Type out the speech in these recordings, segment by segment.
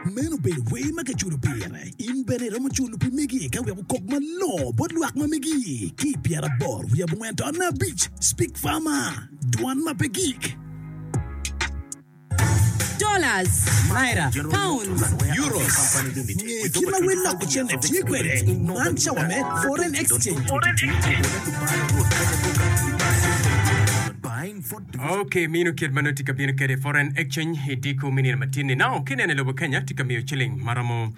Meno obedo wer ma kiculo pire. In bene iromo culo pi megi ka wek okok malongo bot lwak ma megi. Ki i pyeraboro wiye abongwen to nne abic, Speak Farmer, Dwan ma pe gik. dollars, naira, pounds, euros. Nge kit ma wel loko cente tye kwede, man cawa me foreign exchange. Ok, mino kit ma nongo tye ka bino kwede foreign exchange i diko me nino matin-ni. Now, ka ineno i lobo Kenya, tye ka miyo ciling ma romo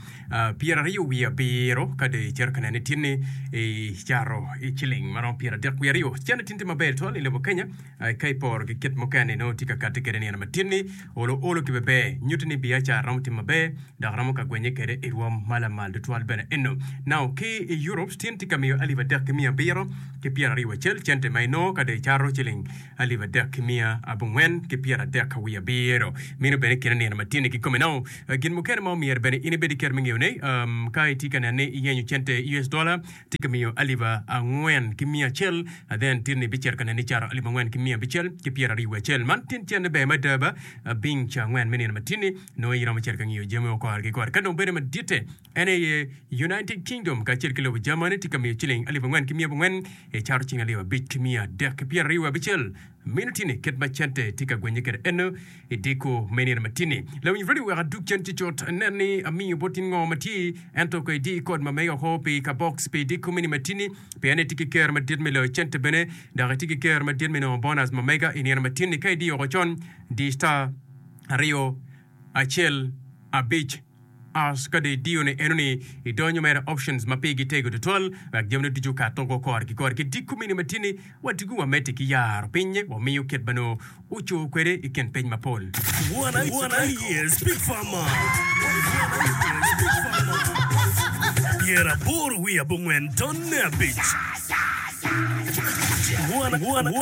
pyeraryo wiye abiro, ka dong icito ka neno i tin-ni, icato ciling ma romo pyeradek wiye aryo. Cente tin tye maber twal i lobo Kenya, ka iporo ki kit mukene-ni nongo tye ka kati kwede nino matin-ni. Olo olo ki beber nyutti ni biacara romo tim maber dok romo ka gwenye kede i rwom ma lamal tutwal bene eno. Now ki i Europe stin tye ka miyo alip adek ki miya abiro ki pyer ariyo acel cente ma inongo ka dong icato ciling alip adek ki miya abongwen ki pyer adek ka wiye abiro. Meno bene kine nino ma tye-ni kikome. Now gin mukene ma omyero bene in ibed ki kero me ngeyo ne, ka itye ka neno ni iyenyo cente US dollar, tye ka miyo alip angwen ki miya acel, then titni bicito ka neni cato alip angwen ki miya abicel ki pyeraryo wiye acel. Man tin tyenne ber mada ba? Abiny ca angwen me nino matini, nongo iromo cito ka ngiyo jami woko kore ki kore. Ka dong bede maditte, en aye United Kingdom kacel ki lobo Germany tye ka miyo ciling alip angwen ki miya abongwen, icato ciling alip abic ki miya adek ki pyeraryo wiye abicel. Meno tye ni kit ma cente tye ka gwenye kwede eno i deko me nino matini. Lawiny radio wek adug cen cucut nen ni amiyo bot in ngo ma tye, ento ko idi i kod ma mege woko pi ka box pi deko me nino matini, pien itye ki ker madit me loyo cente bene dok itye ki ker madit me nongo bonus ma mega i nino matini ka idiyo woko con. Di star aryo. acel abic hash ka dong idiyo ne eno ni idonyo mere options ma pigi tego tutwal wek jami ne ducu okato go kor ki kor ki diko mini matini ni wa diko wa meti ki yaro piny wa miyo kit ma noo oco kwede ikin piny mapol. One years big farmer Pyer aboro wiye abongwen tonne abic One